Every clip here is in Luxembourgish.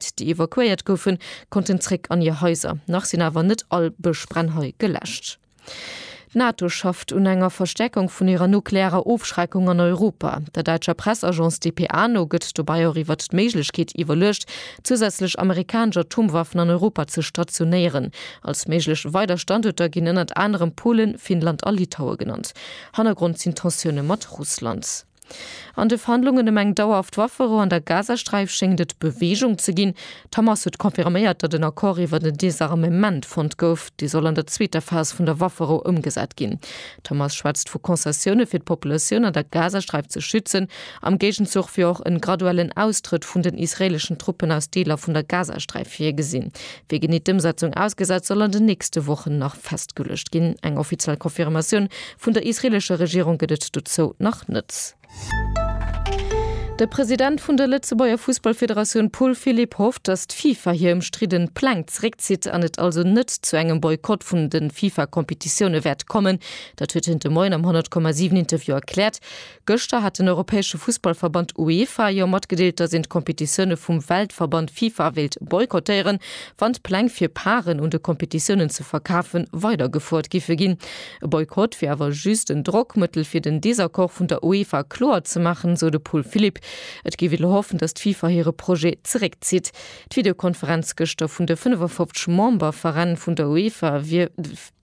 déi evakuéiert goufen, konnten zréck an hir Haiser. Nach sinn awer net all Bëschbrennhai geläscht. D'NATO schafft un enger Verstäerkung vun hirer nuklearer Ofschreckung an Europa. Der däitscher Pressagence dpa no gëtt dobäi och iwwert d'Méiglechkeet iwwerluecht, zousätzlech amerikanesch Atomwaffen an Europa ze stationéieren. Als méiglech weider Standuerter ginn ënnert anerem Polen, Finnland a Litaue genannt. Hannergrond sinn d'Tensioune mat Russland. An de Verhandlungen ëm eng dauerhaft Waffero an der Gazasträif schéngt et Beweegung ze ginn. D'Hamas huet confirméiert, datt en Accord iwwer en Desarmement fonnt gouf, dee soll an der zweeter Phas vun der Waffero ëmgesat ginn. D'Hamas schwätzt vu Concessioune fir d'Populatioun an der Gazasträif ze schützen, am Géigenzuch wier och en graduellen Austrëtt vun den israeeleschen Truppen aus Deeler vun der Gazasträif virgesinn. Wéi genee d'Ëmsetzung ausgesäit, soll an den nächste Wochen nach festgeluecht ginn. Eng offiziell Confirmatioun vun der israeelescher Regierung gëtt et dozou nach net. De President vun der Lëtzebuerger Fussballfederatioun Paul Philipp hofft, datt d'FIFA hir ëmstridden Pläng zeréckzitt an et also net zu engem Boykott vun de FIFA-Competitioune wäert kommen. Dat huet hien de Moien am 100,7 Interview erkläert. Gëschter hat den europäesche Fussballverband UEFA jo matgedeelt, datt een d'Kompetitioune vum Weltverband FIFA wéilt boykottéieren, wann d'Pläng fir Paren un de Kompetitiounen ze verkafe weidergefuert giffe ginn. E Boykott wier awer just en Drockmëttel fir den Desaccord vun der UEFA kloer ze maachen, esou de Paul Philipp. Et géif ee lo hoffen, datt d'FIFA hire Projet zeréckzitt. D'Videokonferenz gëschter vun de 55 Memberveräin vun der UEFA wier.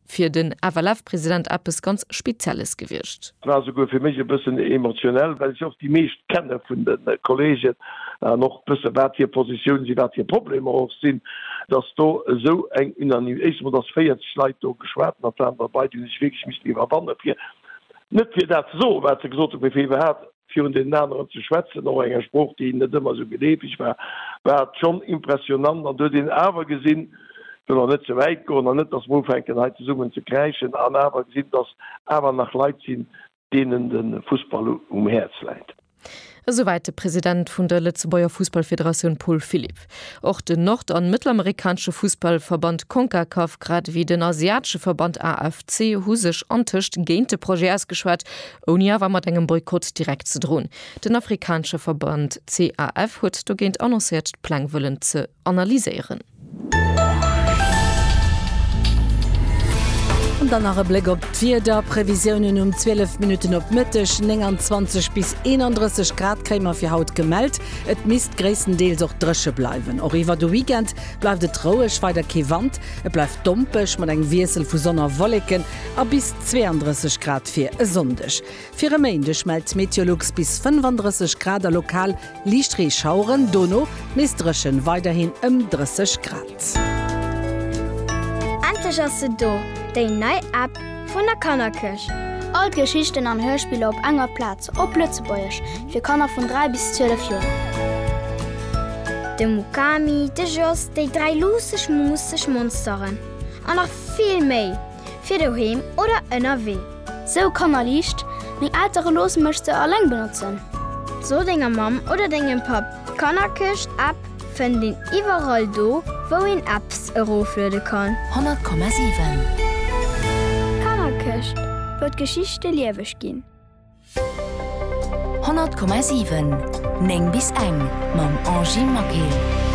fir den FLF-President eppes ganz Spezielles gewiescht. Et war souguer fir mech e bëssen emotionell, well ech och déi meescht kenne vun de Kolleegen an och wësse wat hir Positioune sinn, wat hir Problemer och sinn. Datt do esou eng Unanimitéit, éischt emol datt 40 Leit do geschwat hunn an d'Aner bei, déi hunn sech wierklech missten iwwerwanne fir net fir dat ze soen, wat se gesot hunn, mee fir iwwerhaapt virun deenen aneren ze schwätzen, och enger Sprooch, déi net ëmmer esou geleefeg war, war et schonn impressionnant. An do huet een awer gesinn, ech wëll och net ze wäit goen an net, datt mer ufänken hei zesummen ze kräischen, an awer gesinn, datt awer nach Leit sinn, deenen de Fussball um Häerz läit. Esouwäit de President vun der Lëtzebuerger Fussballfederatioun Paul Philipp. Och den nord an mëttelamerikanesche Fussballverband Concacaf grad ewéi den asiatesche Verband AFC hu sech antëscht géint de Projet ausgeschwat, ouni awer mat engem Boykott direkt ze droen. Den afrikanesche Verband CAF huet dogéint annoncéiert d'Pläng wëllen ze analyséieren. An dann nach e Bléck op d'Wiederprevisiounen, Um 12 Minutten op Mëtteg 29 bis 31 Grad kréie mer fir haut gemellt. Et misst gréisstendeels och dréche bleiwen. Och iwwer de Weekend bleift et roueg, weider kee Wand. Et bleift dompeg mat engem Wiessel vu Sonn a Wolleken a bis 32 Grad fir e Sonndeg. Fir e Méindeg mellt Meteolux bis 35 Grad a lokal liicht Reeschaueren, dono nees dréchen, weiderhin ëm 30 Grad. Endlech ass se do, déi nei App! Vun der Kannerkirch. All d'Geschichten an Hörspiller op enger Plaz, op Lëtzebuergesch, fir Kanner vun 3 bis 12 Joer. De Mukami, de Jos, déi dräi luusseg, muusseg Monsteren an nach vill méi, fir doheem oder ënnerwee. Sou Kanner liicht, meng Eltere loosse mech se alleng benotzen. So denger Mamm oder dengem Papp d'Kannerkirch-App. Fënnt een iwwerall do wou een Apps erofluede kann. 100,7. Kannerkëscht, wou d'Geschichte lieweg ginn. 100,7. 9 bis eng mam Angie Maquet.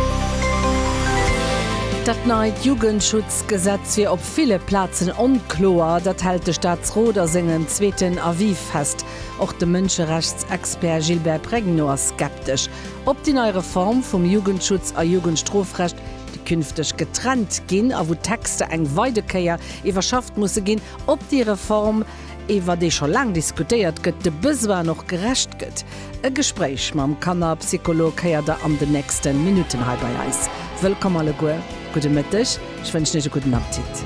Dat neit Jugendschutzgesetz wier op ville Plazen onkloer. Dat hält de Staatsrot a sengen zweeten Avis fest. Och de Mënscherechtsexpert Gilbert Pregno ass skeptesch. Ob déi nei Reform vum Jugendschutz a Jugendstrofrecht, déi künfteg getrennt ginn a wou d'Texter eng weide Kéier iwwerschafft musse ginn, ob déi Reform, iwwer déi scho laang diskutéiert gëtt, de Besoinen och gerecht gëtt? E Gespréich mam Kannerpsycholog héiert der an den nächste Minutten hei bei eis. Wëllkomm alleguer, gudde Mëtteg, ech wënschen Iech e gudden Appetit.